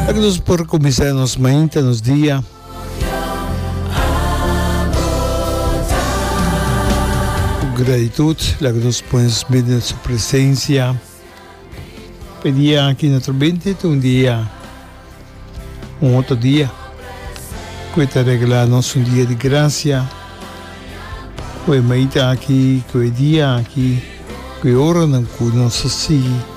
Aki nos por kuminsá nos mainta, nos dia. Ku gratitut, laga nos pones bini na su presensia. Pa e dia aki no ta bini ta un dia, un otro dia ku e ta regalá nos un dia di grasia, ku e mainta aki, ku e dia aki, ku e oranan ku nos a sigui.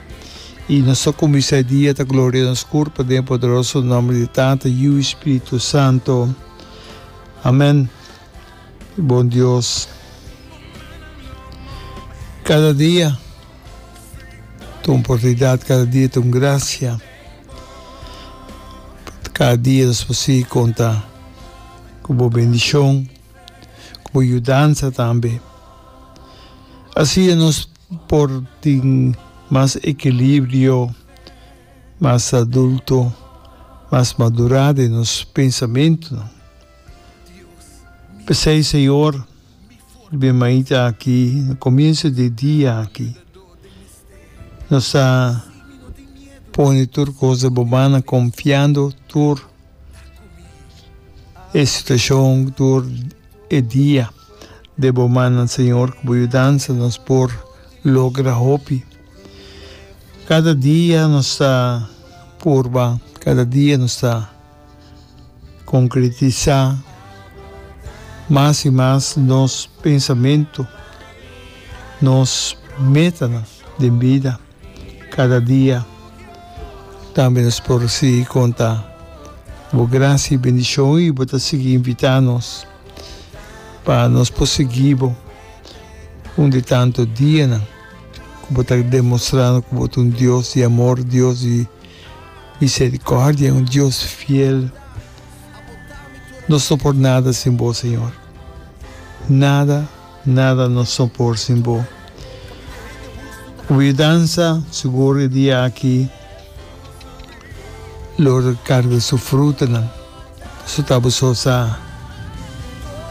I nos ta kuminsá e dia ta gloria nos kur pa den poderoso nòmber di Tata, Yu i Spiritu Santu. Amèn. Bon Dios, kada dia ta un oportunidat, kada dia ta un grasia. Kada dia nos por sigui konta ku bo bendishon, ku bo yudansa tambe. Asina nos Por tin mas ekilibrio, mas adulto, mas madurá den nos pensamentunan. P'esei, Señor, den mañita aki, na komienso di e dia aki, nos ta pone tur kos den Bo manan, konfiando tur. E situacion tur e dia de bo mana Señor cu bo yudansa nos por logra hopi. Cada dia nos ta purba, cada dia nos ta concretisa mas y mas nos pensamento, nos metanan den bida. Kada dia. Tambe nos por sigui konta Bo grasia i bendishon i Bo ta sigui invitá nos pa nos por sigui Bo un di tantu dianan ku Bo ta demostrando ku Bo ta un Dios di amor, Dios di miserikòrdia i un Dios fiel. Nos no por nada sin Bo, Señor, nada. Nada no so por sin bo. Wiudansa sigur e dia aki lo recarga su frutanan. Resulta bo so sa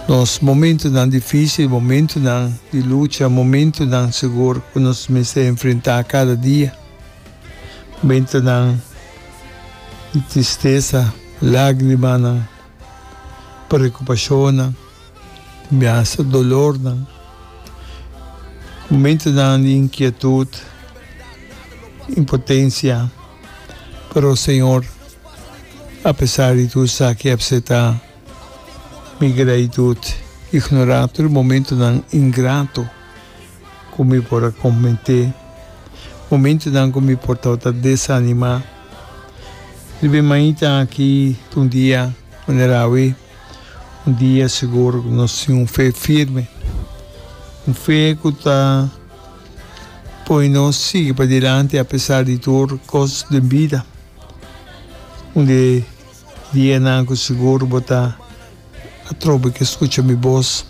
nos momentonan dificil, momentonan di lucha, momentonan sigur cu nos mester enfrenta cada dia, momentonan di tristeza, lagrimanan. preokupashonnan, tambe hasta dolornan. Momentonan di inkietut, impotensia, pero Señor, apesar di tur esaki ep seta mi gratitut, ignorá tur e momentonan ingrato. ku mi por a konprenté. Momentunan ku mi por tabata desanimá. Riba e mainta aki ta un dia manera awe, un dia sigur ku nos tin un fe firme. Un fe ku ta pone nos sigui padilanti apesar di tur kos den bida. Dienan ku sigur bo ta atrobe ke skucha mi bos,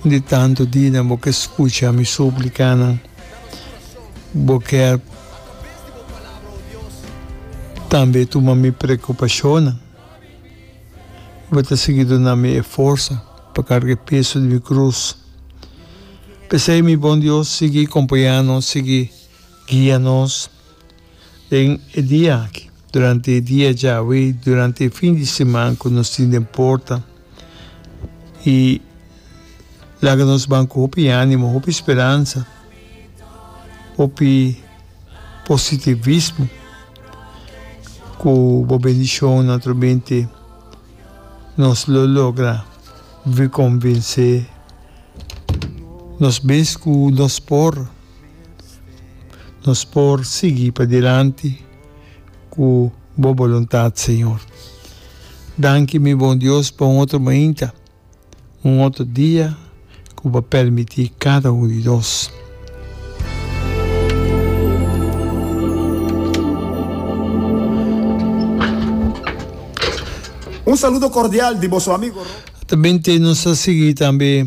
un di tantu dinan bo ke skucha mi súplikanan. Bo kèr tambe tuma mi preokupashonnan i bo ta sigui duna mi e forsa pa karga e peso di mi krus. P'esei, mi bon Dios, sigui kompañá nos, sigui guia nos. Den e dia aki, durante e dia djawe i durante e fin di siman ku nos tin den porta, i laga nos ban ku hopi ánimo, hopi speransa, hopi positivismo, ku bo bendishonnan naturalmente nos lo logra konvensé nos mes ku nos por. Nos por sigui padilanti cu bo boluntad, Señor. Danki, mi bon Dios, pa un otro mainta, un otro dia cu bo a permiti cada un di nos. Un saludo cordial di boso amigo Rob. Atabente nos a sigui tambe.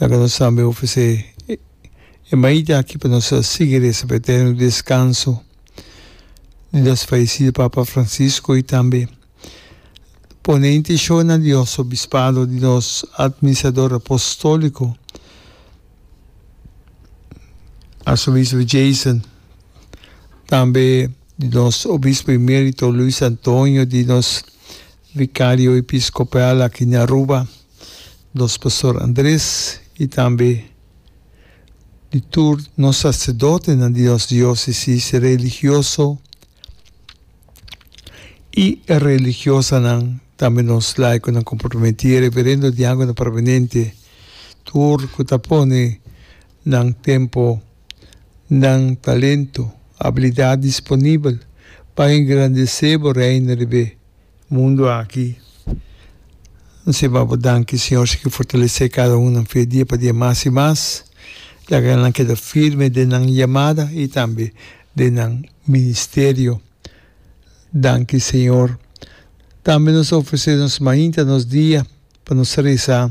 Laga nos tambe ofresé e maita aki pa nos sigui resa pa e eterno deskanso di nos fayesido Papa Francisco i tambe pone intishon na Dios Obispado di nos Atministrador Apostóliko Arsobispo Jason, tambe di nos Obispo Emérito Luis Antonio, di nos Vicario Episkopal aki na Aruba. nos Pastor Andres y tambe di tur nos sacerdotenan di nos diocesis, e religioso y e religiosanan, tambe nos laiconan comprometí, e reverendo diaconan permanente, tur cu ta pone nan tempo, nan talento, abilidad disponibel pa engrandecé bo Reino riba e Mundo aki. N simbra bo danki, Siñor, si ke fortalesé kada un nan fe dia pa dia mas i mas, yaca e nan keda firme den nan yamada i tambe den nan ministerio. Danki, Señor. Tambe nos ta ofresé nos mainta nos dia pa nos rezá.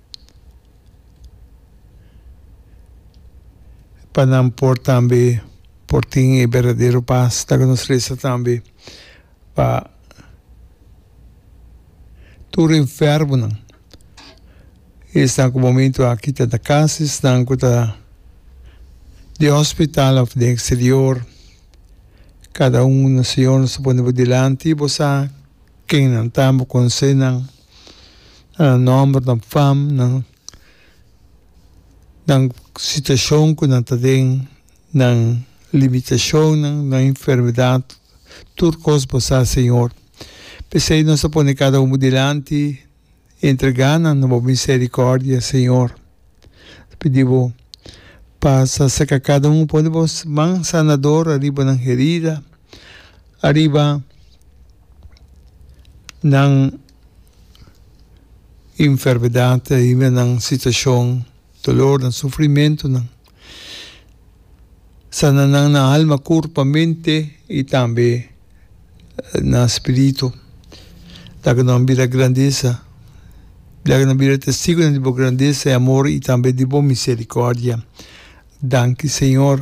pa nan por tambe por tin e berdadero pas, ta ke nos resa tambe pa tur enfermonan, esnan ku momentu aki ta na kas, esnan ku ta den hospital òf den eksterior, kada un, Señor, nos ta pone bo dilanti, bo sa kennan ta, bo konse nan. nan nòmber, nan fam, nan situashon ku nan ta den, nan limitashonnan, nan enfermedat, tur kos Bo sa, Señor. P'esei nos ta pone kada unu dilanti, entregá nan na Bo miserikòrdia, Señor. Ta pidi bo pasa saka kada un pone bo man sanador ariba nan herida, ariba nan enfermedad, ariba nan situacion, dolornan, sufrimentonan. Sana nan na alma, kurpa, mente i tambe na spiritu. Laga nan bira grandesa. Laga nan bira testigunan di bo grandesa i amor i tambe di bo miserikòrdia. Danki, señor.